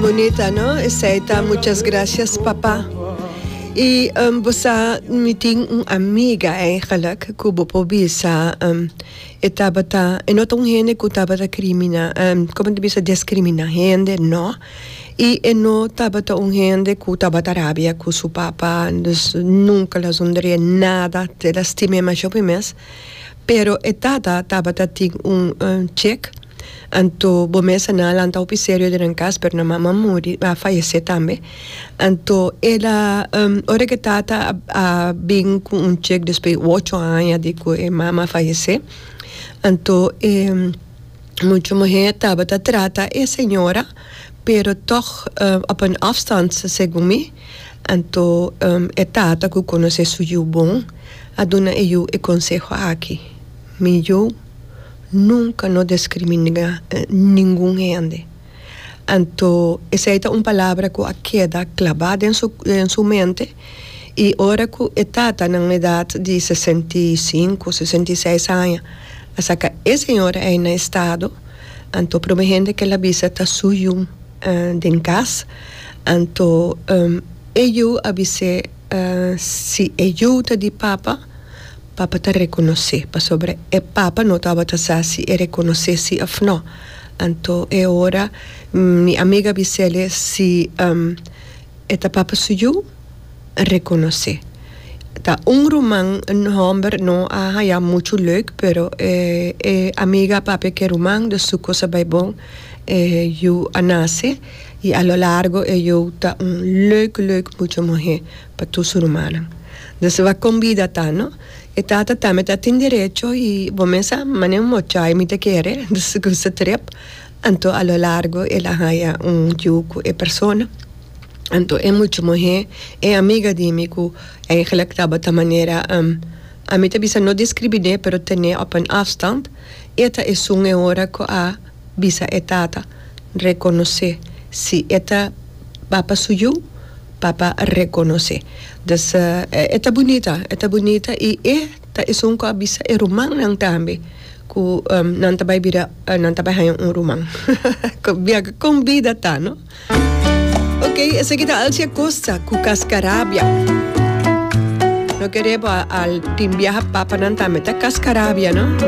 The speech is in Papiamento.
Bonita no esey ta muchas gracias papa y bo sa mi tin un amiga eigenlijk cu bo por bisa e tabata e no ta un hende cu tabata crimina como ta bisa descrimina hende no y e no tabata un hende cu tabata rabia cu su papa dus nunca lo a haci un dere nada te lastima demasiado por e mes pero e tata tabata tin un check Anto bo mes a na lanta hopi serio den nan cas, pero nan mama a muri, a fayece tambe. Anto el a, ora cu e tata a bin cu un check despues di ocho aña di cu e mama a fayece, anto e mucho muher tabata trata e señora, pero toch op een afstand, segun mi. Anto e tata cu conoce su yu bon a duna e yu e conseho aki, Mi yu. Nunka no deskriminá ningun hende. Anto esei ta un palabra ku a keda klabá den su den su mente i ora ku e tata na un edat di sesenta i sinku sesenta i seis aña a saka e señora ei na estado anto prome hende ku el a bisa ta su yu den kas anto e yu a bis'é si e yu ta di papa Papa ta rekonosé, pasobra e Papa no tabata sa si e rekonosé sí òf no. Anto e ora mi amiga bis'ele si e ta Papa su yu, a rekonosé. Ta un ruman, un hòmber, no a haña muchu leuk, pero e amiga a papia ku e ruman, dus su kos a bai bon, e yu a nase i a lo largo e yu ta un leuk, leuk muchu muhé. pa tur su rumannan. Nos lo a combida ta no. E tata tambe ta tin derecho y bo mesa mane un mochai mi ta kere, entonces con su trep anto a lo largo el a haya un yu cu e persona. Anto e mucha muhe e amiga di mi cu eigenlijk tabata manera a mi ta bisa no describine pero tene op een afstand, e ta esun e ora cu a. bisa e tata rekonosé si e ta ba pa su yu papa rekonosé dus e ta bunita e ta bunita i e ta esun ku a bisa e rumannan tambe ku nan ta bai bira nan ta bai haña un ruman biaha kon bida ta no ok esaki ta Alci Acosta ku Cascarabia no kere bo al tin biaha papanan tambe ta Cascarabia no.